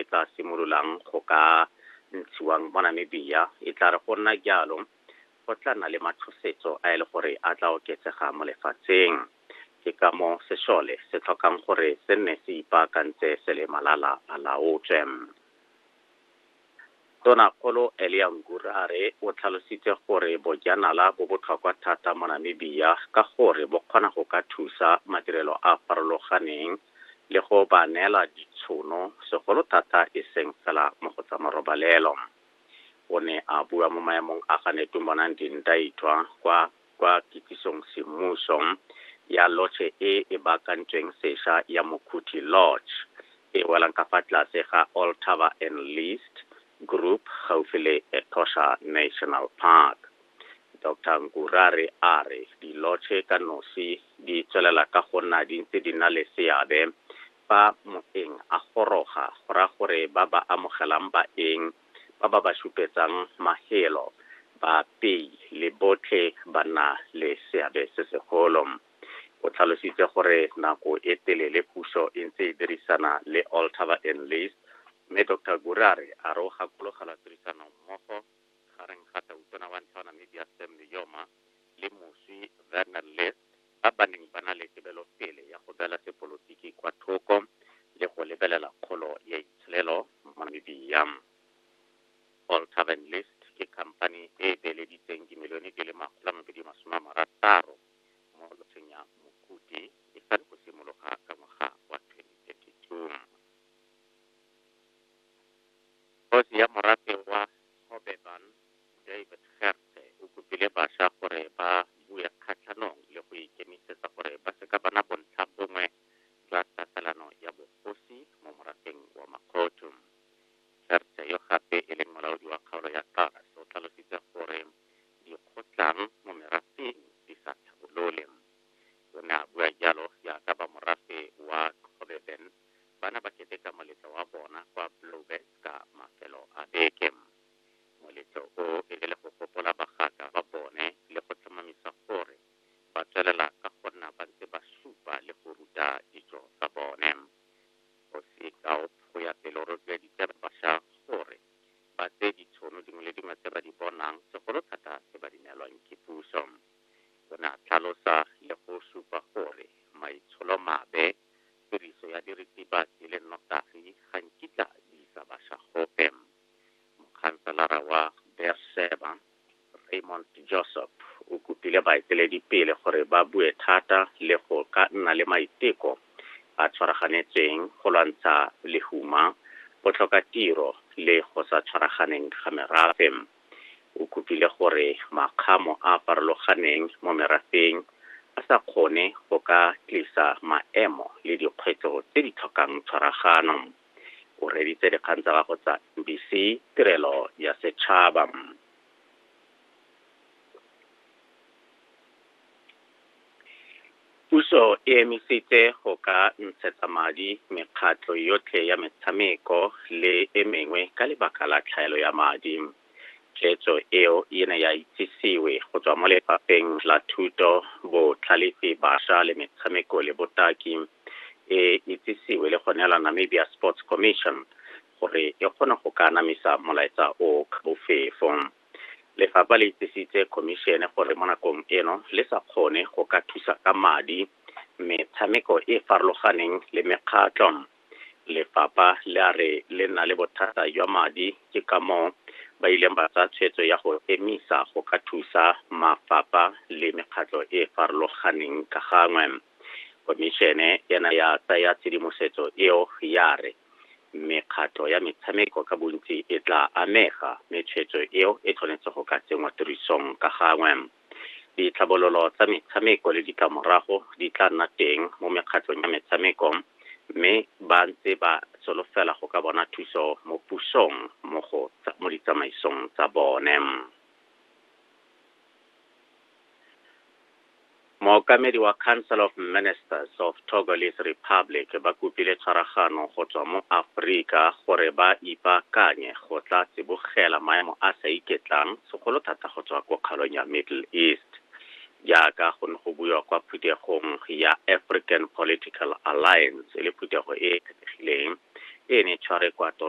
e tla simololang go ka ntshiwang mo Namibia e tla re go nna jalo go tla nna le matshosetso a e le gore a tla oketsega mo lefatsheng ke ka mo sešole se tlhokang gore se nne se ipaakantse se le malala a laotswe Tonakgolo Elia Ngura a re o tlhalositse gore bojanala bo botlhokwa thata mo Namibia ka gore bo kgona go ka thusa madirelo a a farologaneng le go ba neela ditshono segolo thata e seng fela mo go tsa marobalelo. O ne a bua mo maemong a ga Netumbonandini Ndaitwah kwa kwa kitsisong semmuso ya lotšhe e e baakantsweng sesha ya Mokhuthi Lodge, e welang ka fa tlase ga All Taba and List Group gaufi le Etosha National Park. Doctor Nkurare a re dilotšhe ka nosi di tswelela ka go nna di ntse di na le seabe fa moeng a goroga, go raya gore ba ba amogelang baeng, ba ba ba šupetsang mahelo, baapei le botlhe ba nna le seabe se segolo. O tlhalositse gore nako e telele puso e ntse e dirisana le Altaba and Lees mme Doctor Gure a re a re o gakologelwa tirisanommogo gareng ga Tautona wa ntlha wa Namibia Sam Nujoma le moswi Werner List ba ba neng ba na le tebelopele ya go beela sepolotiki kwa thoko le go lebelela kgolo ya itsholelo mo Namibia. Paul Tavern List ke khamphani e e beeleditseng dimilione di le makgolo a mabedi masome a marataro mo lotsheng ya Mokuti e sale go simologa ka ngwaga wa 2032. Kgosi ya morafe wa Hobeban David Gertze o kopile basha gore ba bue kgatlhanong le go ikemisetsa gore ba seka ba na bontlha bongwe jwa tatelano ya bogosi mo morafeng wa Makgothu. Gertze yo gape e leng molaodi wa kgaolo ya Taas o tlhalositse gore dikgotlang mo merafeng di sa tlhabolole. O ne a bua jalo jaaka ba morafe wa Xobeben ba ne ba keteka moletlo wa bona kwa Blouberg ka mafelo a beke. Moletlo o e be le go gopola bagaka ba bone le go tlhomamisa gore ba tswelela ka go nna ba ntse ba supa le go ruta ditso tsa bone. Kgosi Gaup go ya pele o rotloeditse basha gore ba tseye ditshono dingwe le dingwe tse ba di bonang, segolo thata tse ba di neelwang ke puso. O ne a tlhalosa le go supa gore maitsholomabe, tiriso ya diritibatsi le nnotagi ga nkitla di isa basha gope. Mokhanselara wa Beerseba, Raymond Josop, o kopile baeteledipele gore ba bue thata le go ka nna le maiteko a tshwaraganetseng go lwantsha lehuma, botlhokatiro le go sa tshwaraganeng ga merafe. O kopile gore makgamo a a farologaneng mo merafeng a sa kgone go ka tlisa maemo le dikgwetlho tse di tlhokang tshwaragano. o reditse dikgang tsa gago tsa mbc tirelo ya setšhaba puso e emisitse go ka ntshetsa madi mekgatlho yotlhe ya metshameko le e mengwe ka lebaka la tlhaelo ya madi Tshwetso eo e ne ya itsisiwe go tswa mo Lefapheng la Thuto, Botlhalefi, Bašwa le Metshameko le Botaki, e itsisiwe le go neela Namibia Sports Commission gore e kgone go ka anamisa molaetsa o ka bofefo. Lefapha le itsisitse Khomišene gore mo nakong eno le sa kgone go ka thusa ka madi metshameko e e farologaneng le mekgatlho Lefapha le a re le nna le bothata jwa madi ke ka moo ba ileng ba tsaya tshwetso ya go emisa go ka thusa mafapha le mekgatlho e e farologaneng ka gangwe. Khomišene ena ya tsaya tshedimosetso eo ya re mekgatlho ya metshameko ka bontsi e tla amega mme tshwetso eo e tshwanetse go ka tsenngwa tirisong ka gangwe. Ditlhabololo tsa metshameko le ditlamorago di tla nna teng mo mekgatlhong ya metshameko mme ba ntse ba solofela go ka bona thuso mo pusong mo go mo ditsamaisong tsa bone. Mookamedi wa Council of Ministers of Togolese Republic ba kopile tshwaragano go tswa mo Aforika gore ba ipaakanye go tla tsibogela maemo a sa iketlang segolo thata go tswa ko kgaolong ya Middle East, jaaka go ne go buiwa kwa phuthegong ya African Political Alliance, e le phuthego e e kgethegileng e ne e tshware kwa toro.